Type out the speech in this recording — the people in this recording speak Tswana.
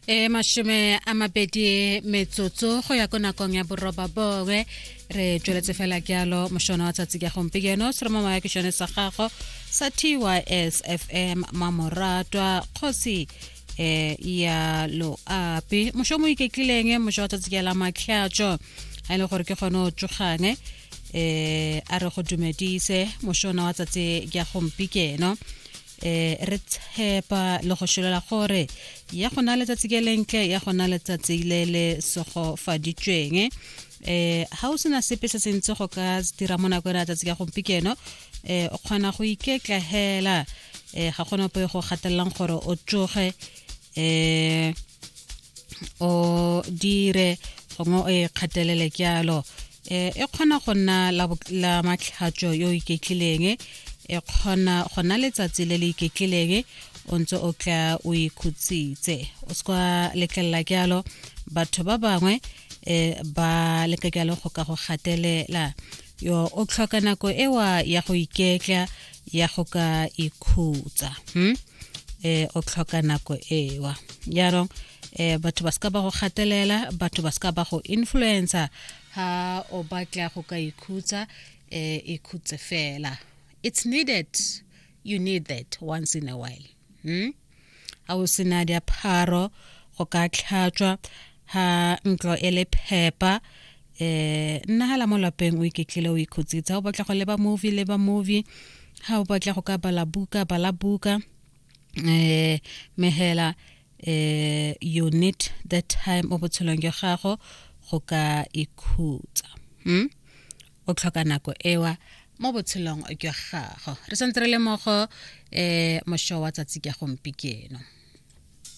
e mashome a mabedi metsotso go ya ko nakong ya boroba bongwe re tsweletse fela jalo mošono wa tsatsi ka gompieno se re mo maya kešone sa gago sa tys fm mamoratwa kgosi eh ya loapi mošo mo iketlileng mošo wa tsatsi ka la matlhatšo a e le gore ke kgone o tsogang eh a re go dumedise mošona wa tsatsi ka gompikeno eh re tshepa le go sholola gore ya go na letsatsi ke lentle ya go na letsatsi le le segofaditsweng eh ha o sena sepe se sentse go ka dira mo nako ya tsatsi ka gompikeno eh o kgona go iketlahela eh ga gona poe go gatelelang gore o tsoge eh o dire gongwe o e kgatelele ke alo eh, e kgona go nna la matlhatso yo iketlileng e kgona go nna letsatsi le le iketlileng o ntse o tla o ikhutsitse o se kwa letlelela ke alo batho ba bangwe um ba leka ke alo go ka go gatelela yo o tlhoka nako ewa ya go iketla ya go ka ikhutsa hmm? eh o tlhoka nako ewa jaanong eh batho ba ska ba go gatelela batho ba ska ba go influencer ha o batla go ka ikhutsa eh ikhutse fela it's needed you need that once in a while hmm? ga o sena diapharo go ka tlhatswa ga ntlo e le phepa eh nna hala mo lapeng o iketlile o ikhutsitsa o batla go leba movie leba movie ha o batla go ka bala buka bala buka eh mehela eh you need that time o botshelong jwa gago go ka ikhutsa hmm? o tlhoka nako ewa mo botshelong jwa gago re santse re le mogo um eh, mošo wa tsatsi ka gompikeno